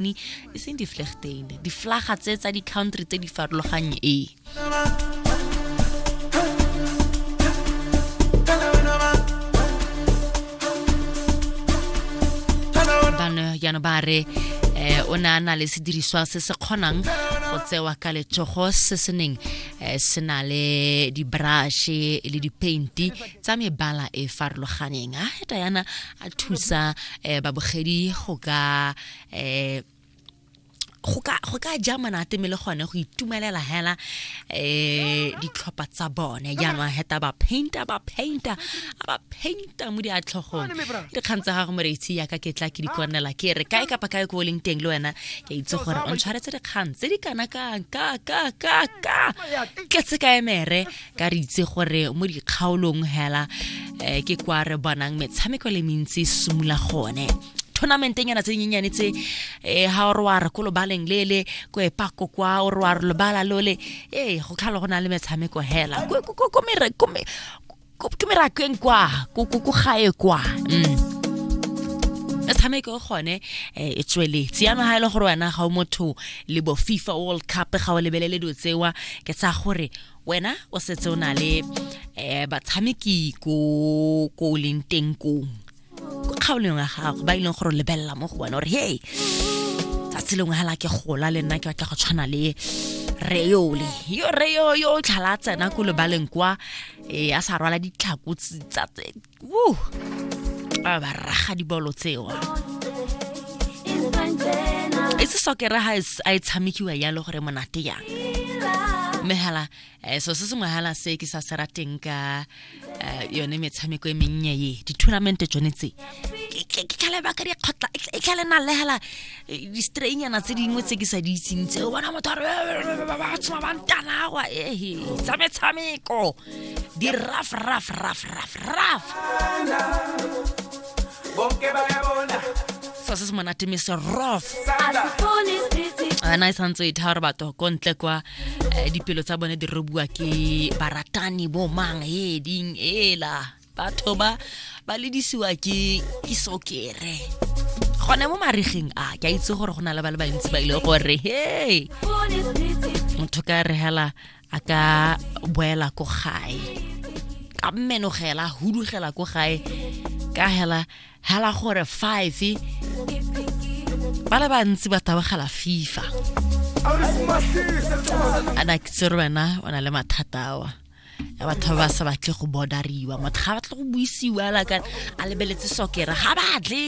Germany e seng di flegtein di flaga tse tsa di country tse di farologanye ee jaanong ba re um o ne a na le sediriswa se se kgonang go tsewa ka letsogo se se neng um se na le dibrashe le dipainti tsa mebala e farologaneng a diana a thusa um babogedi go ka eh go ka go ka ja monate mme le gone go itumelela hela eh ditlhopha tsa bone jaanong heta ba painter ba painter a ba painter mo diatlhogong dikgang tsa gago moreitshi yaka ke tla ke di konela ke re kae kapa kae ko o leng teng le wena ke itse gore o ntshwaretse dikgang tse di kana ka ka ka ka ka tletse ka emere ka re itse gore mo dikgaolong hela um ke kwa re bonang metshameko le mentsi simula gone tournamenteng yana tse dinyenyane tse um ga o re wa re ko lobaleng lele ko epako kwa o re wa re lobala lole ee go tlhalo go na le metshameko hela ke merakeng kwa ko gae kwa mm metshameko e gone eh, e tsweletse yana ga e le gore wena ga o motho le bo fifa world cup ga o lebelele dilo tsewa ke tsa gore wena o setse o na le um batshameki ko ko o leng teng kong ko kgaolong ya gago ba e leng gore o lebelela mo go wena gore hey tsatsi lengwe hela ke gola le nna ke batla go tshwana le reyole yo reyo yo o tlhala a tsena ko lebaleng kwa eh, a sa rwala ditlhako tse- tsa tse- Woo! ba ba raga dibolo tseo e se sokera ha e s- a e tshamekiwa yalo gore monate yang mme hala eh, so se sengwe hala se ke sa se rateng ka eh, yone metshameko e mennye ye di-tournamente tsone tse Ke- ke ke tlhale baka dikgotla e tlha- e tlhale na le hala eh, di-strainyana tse dingwe tse ke sa di itseng tse o bona motho a re, "Eh, eh, eh, ba ba tshoma ba ntanawa ehe tsa metshameko di raf raf raf raf raf se se monate me se rof a na e santse e thara batho ko ntle kwa eh, dipelo tsa bone di robuwa ke baratani bo mang e ding ela batho ba ba ledisiwa ke ke sokere gone mo marigeng a ke a itse gore go na le ba le bantsi ba ile gore he motho ka re hela a ka boela ko gae ka mmenogela hudugela ko gae ka hela hela gore five ba le bantsi ba tabogela fifa ana ke tsere wena o na le mathata awa ya batho ba ba sa batle go bodariwa motho ga batle go buisiwa la ka a lebeletse sokera ga batle